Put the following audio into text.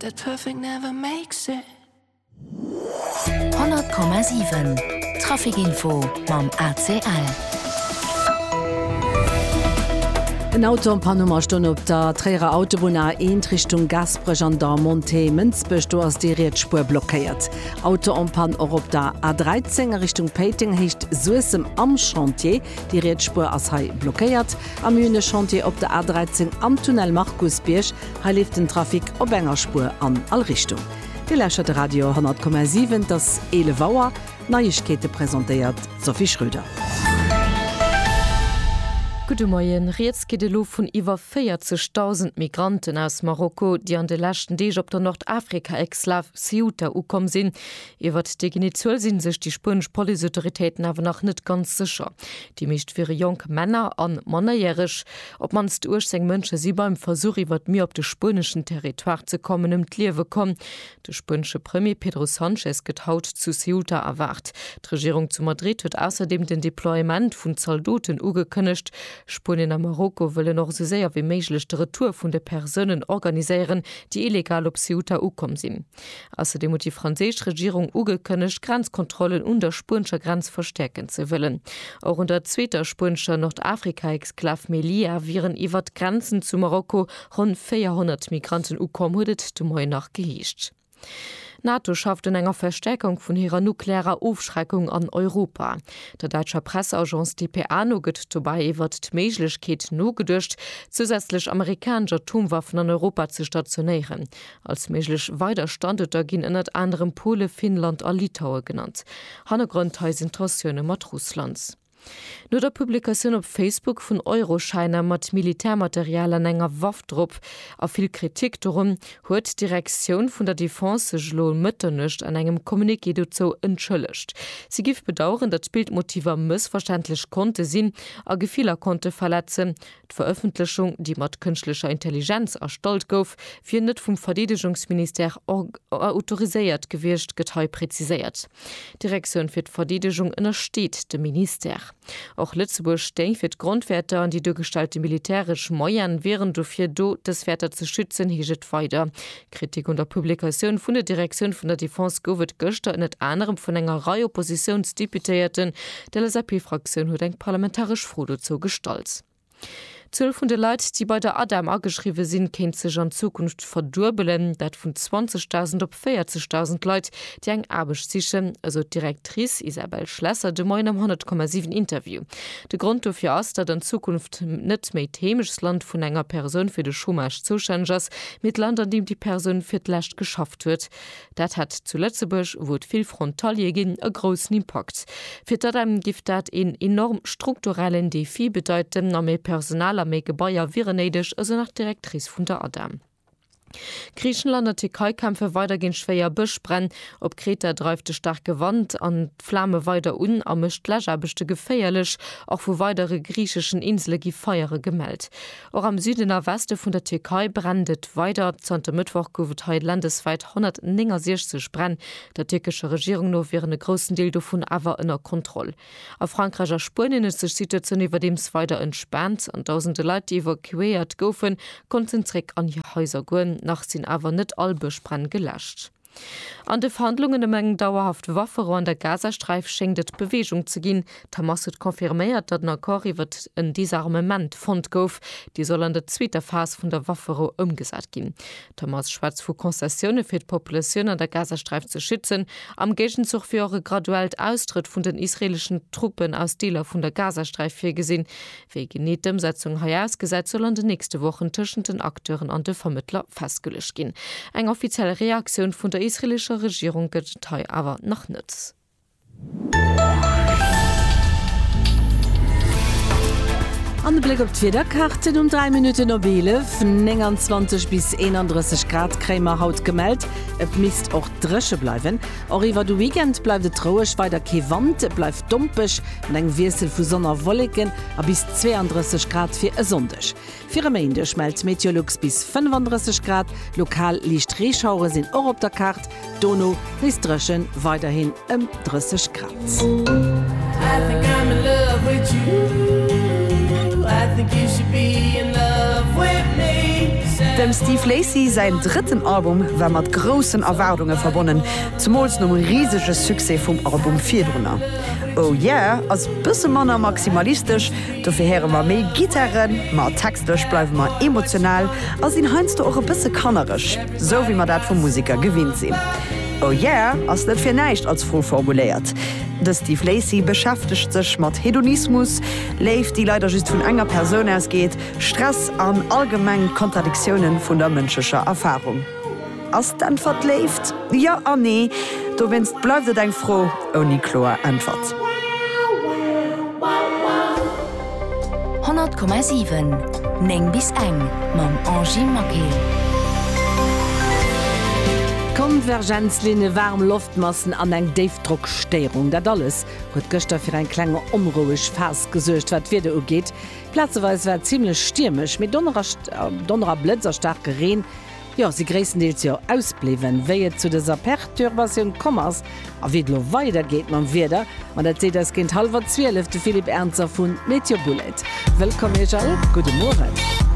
That perfect never makes it. 100,7 Trafic Info mam ACL. En Auto am Panne am Astonn op der Tréierer Autobunn A1 Richtung Gaasperech an der Montée Mënsbech. Do ass déi riets Spuer blockéiert. Auto am Pann och op der A13 a Richtung Péiteng, Héicht Suessem am Chantier. Déi riets Spuer ass hei blockéiert. Am Hühne Chantier op der A13 am Tunnel Markusbierg, hei leeft den Trafic op enger Spuer an all Richtung. Dir lauschtert de Radio 10,7, et ass 11 Auer, d'Neiegkeete presentéiert d'Sophie Schröder. Gudde Moien, Rieds geet elo vun iwwer 40.000 Migranten aus Marokko, déi an de leschten Deeg op der Nordafrika-Exlav Ceuta ukomm sinn. Iwwert déi genee Zuel si sech déi spuenesch Policeautoritéiten awer nach net ganz sécher. Déi meescht wiere jonk Männer a Mannerjäreg. Op d'mannst 18 Mënsche si beim Versuch, iwwer d'Mier op de spueneschen Territoire ze kommen, ëm d'Liewe komm. De spuenesche Premier Pedro Sanchez gëtt haut zu Ceuta erwaart. D'Regierung zu Madrid huet ausserdeem den Deploiement vun Zaldoten ugekënnegt. Spuenien a Marokko wëllen och esou séier wéi méiglech de Retour vun de Persounen organiséieren, déi illegal op Ceuta ukomm sinn. Ausserdeem huet déi franséisch Regierung ugekënnegt, d'Grenzkontrollen un der spuenescher Grenz verstäerken ze wëllen. Och un der zweeter spuenescher Nordafrika-Exklav Melilla wieren iwwert d'Grenzen zu Marokko ronn 400 Migranten ukomm, huet et de Moien nach geheescht. D'NATO schafft un enger Verstäerkung vun hirer nuklearer Ofschreckung an Europa. Der däitscher Presseagence dpa no gëtt dobäi iwwert d'Méiglechkeet nogeduecht, zousätzlech amerikanesch Atomwaffen an Europa ze stationéieren. Als méiglech weider Standuerter ginn ënnert anerem Pole, Finnland a Litaue genannt. Hannergrond hei sinn d'Tensioune mat Russland. No der Publikatioun op Facebook vun Euroschäiner mat Militärmaterial an enger Waff drop a vill Kritik dorun, huet d'Direktioun vun der Defense sech elo um Mëtternuecht an engem Communiqué dozou entschëllegt. Si géif bedaueren, datt d'Bildmotiver mëssverständlech konnte sinn a Gefiller konnte verletzen, D'Verëffentlechung, déi mat kënschtlecher Intelligenz erstallt gouf, wier net vum Verdeedegungsministère autoriséiert gewiescht, gëtt hei preziséiert. D'Direktioun fir d'Verdeedegung ënnersteet dem Ministère. Och Lëtzebuerg stéing fir d'Grondwäerter an déi duergestellte militäresch Moyene wieren dofir do, dës Wäerter ze schützen, heescht et weider. Kritik un der Publikatioun vun der Direktioun vun der Defense gouf et gëschter ënnert anerem vun enger Rei Oppositiounsdeputéierten. D'LSAP-Fraktioun huet eng parlamentaresch Fro dozou gestallt. D'Zuel vun de Leit, déi bei der ADEM ageschriwwe sinn, kéint sech an Zukunft verduebelen, dat vun 20.000 op 40.000 Leit, déi eng Aarbecht sichen, esou d'Directrice Isabelle Schlesser de Moien am 100,7 Interview. De Grond dofir ass, datt an Zukunft net méi d'Heemechtsland vun enger Persoun fir de Chômage zoustänneg ass, mee d'Land an deem déi Persoun fir d'lescht geschafft huet. Dat hätt zu Lëtzebuerg, wou et vill Frontaliere ginn, e groussen Impakt. Fir d'ADEM géif dat een enorm strukturellen Defi bedeiten a méi Personal a méi Gebaier wieren néideg, esou nach d'Directrice vun der ADEM. Griichenland a Tierkei kämpfe weider géint schwéier Bëschbränn. Op Kreta dreift de staarke Wand d'Flame weider un a mécht d'Läschaarbechte geféierlech. Och vu weidere griicheschen Insele gi Feiere gemellt. Och am Süden a Weste vun der Tierkei brennt et weider. Zanter Mëttwoch gouf et hei landeswäit 169 Bränn. Der tierkescher Regierung no wieren e groussen Deel dovun awer ënner Kontroll. A Frankräich a Spuenien huet sech d'Situatioun iwwerdeems weider entspaant an dausende Leit, déi evakuéiert goufen, konnten zréck an hir Haiser goen. Nach sinn awer net all Bëschbränn geläscht. An de Verhandlungen ëm eng dauerhaft Wafferou an der Gazasträif schéngt et Beweegung ze ginn. D'Hamas huet confirméiert, datt en Accord iwwert en Disarmement fonnt gouf, dee soll an der zweeter Phas vun der Wafferou ëmgesat ginn. D'Hamas schwätzt vu Concessioune fir d'Populatioun an der Gazasträif ze schützen, am Géigenzuch wier och e graduellt Austrëtt vun den israeeleschen Truppen aus Deeler vun der Gazasträif virgesinn, Wéi genee d'Ëmsetzung hei ausgesäit, soll an de nächste Wochen tëschent den Acteuren an de Vermëttler festgeluecht ginn. Eng offiziell Reaktioun vun der israelescher Regierung gëtt et hei awer nach net. An e Bléck op d'Wiederkaarten, Um 3 Minutten op 11, 29 bis 31 Grad kréie mer haut gemellt. Et misst och dréche bleiwen. Och iwwer de Weekend bleift et roueg, weider kee Wand, et bleift dompeg. An engem Wiessel vu Sonn a Wolleken a bis 32 Grad fir e Sonndeg. Fir e Méindeg mellt Meteolux bis 35 Grad. Lokal liicht Reeschauere sinn och op der Kaart, dono nees dréchen, weiderhin ëm 30 Grad. Dem Steve Lacy säin drëtten Album war mat groussen Erwaardunge verbonnen, zemools nom risege Succès vum Album virdrunner. Oh yeah ass bësse manner maximalistesch, dofir héiere mer méi Gittaren, ma textlech bleiwe mer emotional a sinn heiansdo och e bësse kannereg, sou wéi mer dat vu Museker gewinnt sinn. Oh yeah ass net fir näischt als Fro formuléiert. De Steve Lacy beschäftegt sech mat Hedonismus, Léift déi leider just vun enger Persoun ausgeet, Stress an allgemeng d'Kontradiktiounen vun der mënschlecher Erfarung. Ass d'Äntwert Léift? Jo an Nee. Dowéinst bleift et eng Fro ouni kloer Äntwert. 100,7 9 bis eng mam Angie Maquet. Konvergenzlinne, waarm Loftmassen an eng Déifdrockstéierung, dat alles huet gëschter fir eng kleng onroueg Phas gesuergt. Wat d'Wieder ugeet, plazeweis war et zimmlech stiermesch, mee Donner a Blëtz a staarke Reen jo si gréisstendeels jo ausbliwwen, wéi et zu dëser Per-turbatioun komm ass a wéi et elo weider geet mam Wieder, ma dat seet eis géint hallwer zwielef de Philippe Ernzer vu Meteobullet. Wëllkomm Iech all, gudde Mueren.